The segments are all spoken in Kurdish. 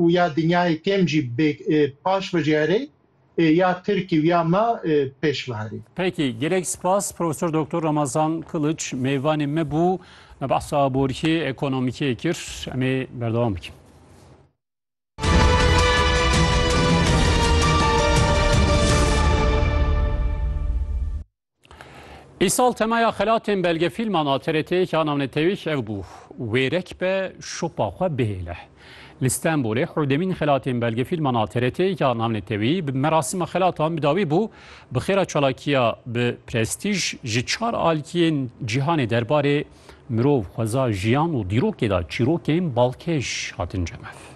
û ya dinyayê kêm jî paş bijerê ya Tirkî û ya me pêş biherê. Peki, gelek spas Profesor Doktor Ramazan Kılıç mêvanê me bû, me behsa aborîkê, ekonomîkê kir. Em ê berdewam bikin. Îsal temaya xelatên belgefîlman a TRT'ê ya navnetewîş ev bû wêrek be şopa xwe bihêle. Li Stenbolê hewdemîn xelatên belgefîlman a TRT'ê ya navnetewî bi merasîma xelatan bi dawî bû. Bi xêra çalakiya bi prestîj ji çar aliyên cîhanê derbarê mirov, xweza, jiyan û dîrokê de çîrokên balkêş hatin cemev.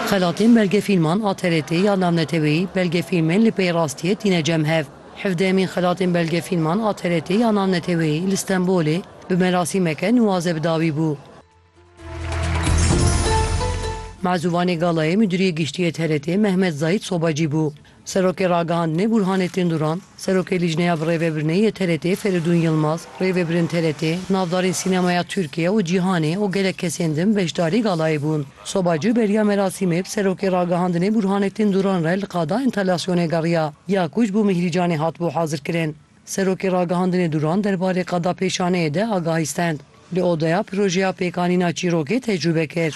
Xelatên belgefîlman a TRT'ê ya navneteweyî Belgefîlmên li pey rastiyê tîne cem hev. Hevdehemîn Xelatên Belgefîlman a TRT'ê ya navneteweyî li Stenbolê bi merasîmeke nuwaze bi dawî bû. Mezûvanê Galayê Midûriyê Giştî yê TRT'ê Mehmet Zayît Sobacî bû. Serokê Ragihandinê Bûrhanê Tênduran, Serokê Lîjneya Birêvebirnê yê TRT'ê Ferîdûn Yilmaz, rêvebirên TRT, navdarên sînemaya Tirkiye û cîhanê û gelek kesên din beşdarî galayê bûn. Soba Cû beriya merasîmê bi Serokê Ragihandinê Bûrhanê Tênduran re li Qada Entalasyonê geriya ya ku ji bo Mîhrîcanê hatibû hazirkirin. Serokê Ragihandinê Duran derbarê qada pêşaneyê de agahî stend. Li odeya projeya pêkanîna çîrokê tecrûbe kir.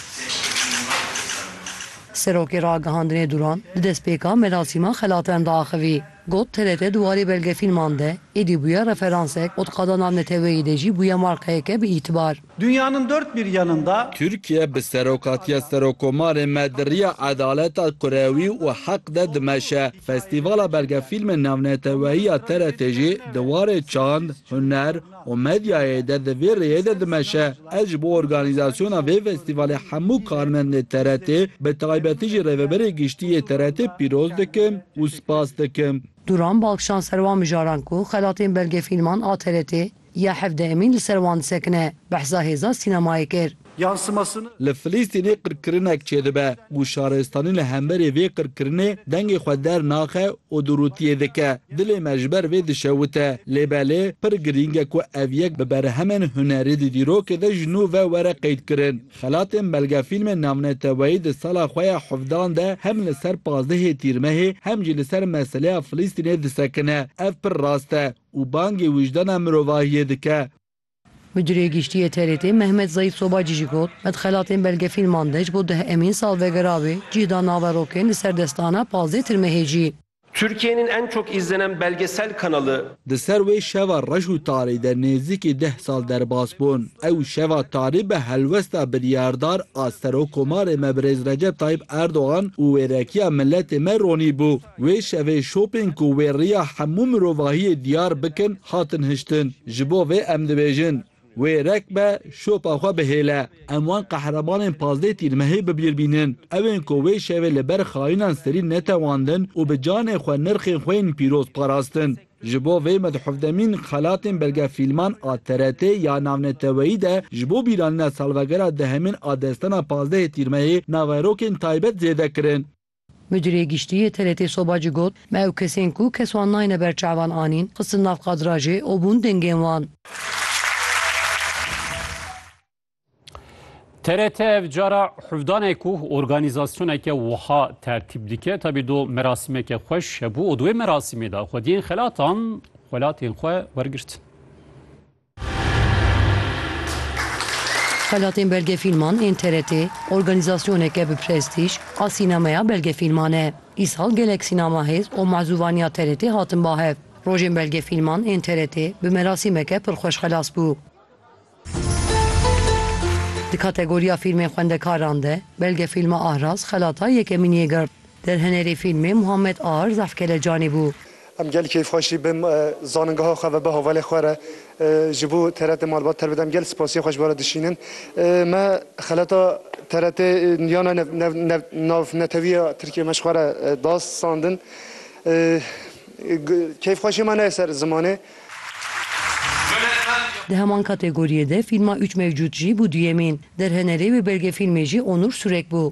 Serokê Ragihandinê Duran di destpêka merasîma xelatin de axivî. Got, TRT di warê belgefîlman de êdî bûye referansek û di qada navneteweyî de jî bûye markayeke bi îtibar. Dünyanın dört bir yanında. Türkiye bi serokatiya Serokomarê me di riya edaleta kurewî û heq de dimeşe. Festîvala Belgefîlmên Navneteweyî ya TRT jî di warê çand, huner û medyayê de di vê rêyê de dimeşe. Ez ji bo organîzasyona vê festîvalê hemû karmendên TRT'ê bi taybetî jî Rêveberê Giştî yê TRT'ê pîroz dikim û spas dikim. Duran Balkşan ser wan mijaran ku xelatên belgefîlman a TRT'ê Ya hevdeh Emîn li ser wan disekine, behsa hêza sînemayê kir. Li Filistînê qirkirinek çêdibe û şaristanî li hemberî vê qirkirinê dengê xwe dernaxe û durûtiyê dike. Dilê me ji ber vê dişewite. Lê belê pir girîng e ku ev yek bi berhemên hunerî di dîrokê de ji nû ve were qeydkirin. Xelatên belgefîlmên navneteweyî di sala xwe ya hevdan de hem li ser pazdehê Tîrmehê hem jî li ser meseleya Filistînê disekine. Ev pir rast e û bangê wijdana mirovahiyê dike. Midûrê Giştî yê TRT'ê Mehmet Zeyîd Sobacî jî got, Qet xelatên belgefîlman de ji bo deh emîn salvegera wê cîh da naverokên li ser destana Pazdê Tirmehêcî. Türkiye'nin en çok izlenen belgesel kanalı. Di ser wê şeva reş û tarî de nêzîkî deh sal derbas bûn. Ew şeva tarî bi helwesta biryardar a Serokomarê me Birêz Recep Tayyîp Erdogan û wêrekiya miletê me ronîbû. Wê şevê şopên ku wê riya hemû mirovahiyê diyar bikin hatin hiştin. Ji bo vê em dibêjin, wê rek be şopa xwe bihêle. Em wan qehremanên pazdeh tîrmehê bi bîr bînin. Ewên ku wê şevê li ber xayinan serî netewandin û bi canê xwe nirxên xwe yên pîroz parastin. Ji bo vê medhufdemîn xelatên belgefîlman a TRT'ê ya navneteweyî de ji bo bîranîna salvegera dehemîn a destana pazdehê tîrmehê naverokên taybet zêde kirin. Mudîrê Giştî yê TRT Soba Ci got, Me ew kesên ku kes wan nayêne ber çavan anîn, xistin nav kadrajê û bûn dengên wan. TRT ev cara hevdane ku organîzasyoneke wiha tertîp dike tabî do merasîmeke xweş hebû û di wê merasîmê de xwediyên xelatan xwelatên xwe wergirtin. Xelatên belgefîlman ên TRT'ê organîzasyoneke bi prestîj a sînemeya belgefîlman e. Îsal gelek sînema hêz û mazûvaniya TRT'ê hatin bahev. Rojên belgefîlman ên TRT'ê bi merasîmeke pir xweş xelas bû. Di kategoriya fîlmên xwendekaran de belgefîlma Ahraz xelata yekemîniyê girt. Derhenerê fîlmê Muhammed Ar Zaf Kelecanî bû. Em gel keyf xweş jî bim zanîngeha xwe ve bi havalê xwe re ji bo TRT malbat ter bidem. Gel spasiyê xwe ji we re dişînim. Me xeleta TRT niyana navnetewiya Tirkiyê me ji xwe re da sandin. Keyf xweşiyê me neyê ser zimanê. Di heman kategoriyê de fîlma Üç Mevcut jî bû duyemîn. Derhenerê wê belgefîlmê jî Onur Surek bû.